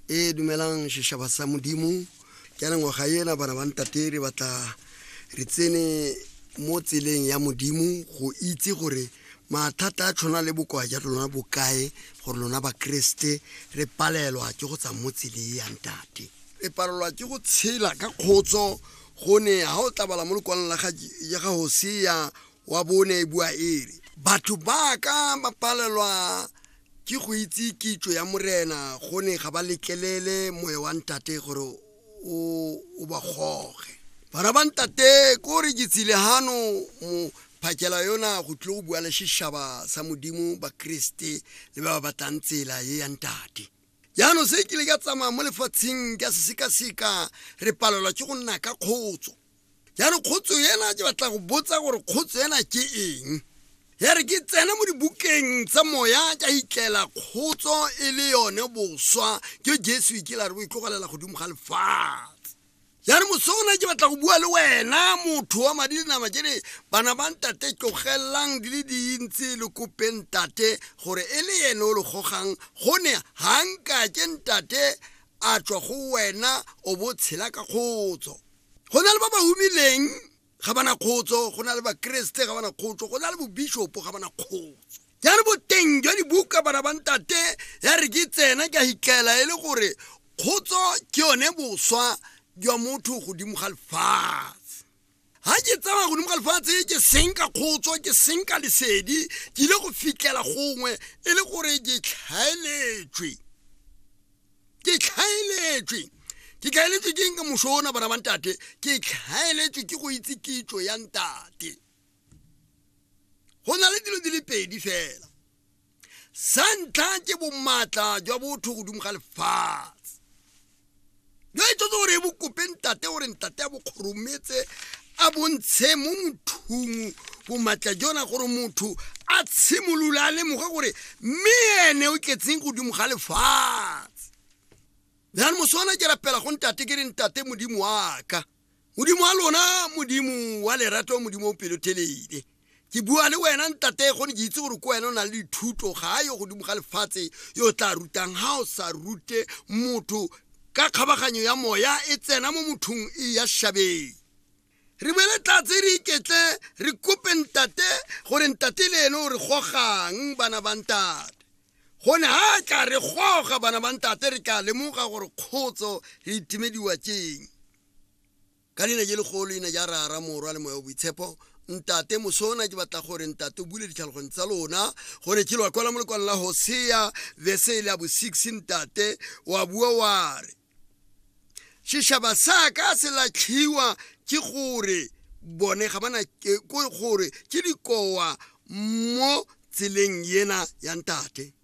e dumelang sešaba sa modimo ka lengwaga ena bana ba ntate re batla re tsene mo tseleng ya modimo go itse gore mathata a tlhona le bokoa ja lona bokae gore lona bakeresete re palelwa ke go tsa mo tsele ya ntate re palelwa ke go tshela ka kgotso gone ga o tlabala mo lekwalong la ya ga hosea wa bone e bua ere batho ba ka ba palelwa Ke go itse kitso ya Morena, go ne ga ba letlelele moya wa ntate gore o o ba goge. Bana ba ntate, ko re ke tsile hano mo phakela yona go tlile go bua le seshaba sa Modimo, Bakriste le ba ba batlang tsela ye ya ntate. Jaanong se kile ka tsamaya mo lefatsheng ka se sekaseka, re palelwa ke go nna ka kgotso. ya re kgotso ena ke batla go botsa gore kgotso ena ke eng ya re ke tsena mo dibukeng tsa moya ka itlela kgotso e le yone boswa ke jesu e kela re bo itlogelela godimo ga lefatshe ya re moso ona ke batla go bua le wena motho wa madi le nama ke re bana ba ntate tlogelelang di le dintsi le kope ntate gore e le ene o le gogang gone ganka ke ntate a tswa go wena o bo tshela ka kgotso go na le ba ba humileng ga bana kgotso go na le bakeresete ga bana kgotso go na le bobishopo ga bana kgotso ya re boteng jwa dibuka bana ba ntate ya re ke tsena ke a hitlela e le gore kgotso ke yone boswa jwa motho godimo ga lefatshe ga ke tsamaya godimo ga lefatshe ke seng ka kgotso ke seng ka lesedi ke ile go fitlhela gongwe e le gore ke tlhaeletswe ke tlhaeletswe ke tlhaeletswe ke eng ka moso ona bana ba ntate ke tlhaeletswe ke go itse kitso ya ntate go na le dilo di le pedi fela sa ntlha ke bomaatla jwa botho godimo ga lefatshe jo e tsotse gore e bokope ntate gore ntate a bokgorometse a bontshe mo mothung bomatla jona gore motho a tshimolola a lemoga gore mme ene o tletseng godimo ga lefatshe jane moswana ke rapela go ntate ke re ntate modimo wa ka modimo wa lona modimo wa lerato modimo o pelothelele ke bua le wena ntate gone ke itse gore ko wena o na le dithuto ga a yo godimo ga lefatshe yo o tla rutang ga o sa rute motho ka kgabaganyo ya moya e tsena mo mothong e ya shabeng re bele tlatse re iketle re kope ntate gore ntate le ene o re gogang bana ba ntate gone ga ka re goga bana ba ntate re ka lemoga gore kgotso re itimediwa keng Ka leina je legolo, leina ja Rara, Morwa, le Moya o Boitshepo. Ntate, mosona ke batla gore, Ntate, o bule ditlhaloganyo tsa lona, gore ke lwa kwala mo lekwalo la Hosea, verse le ya bo six, Ntate, wa bua wa re, sešaba sa ka se latlhiwa ke gore bone ga bana ke gore ke dikowa mo tseleng yena ya ntate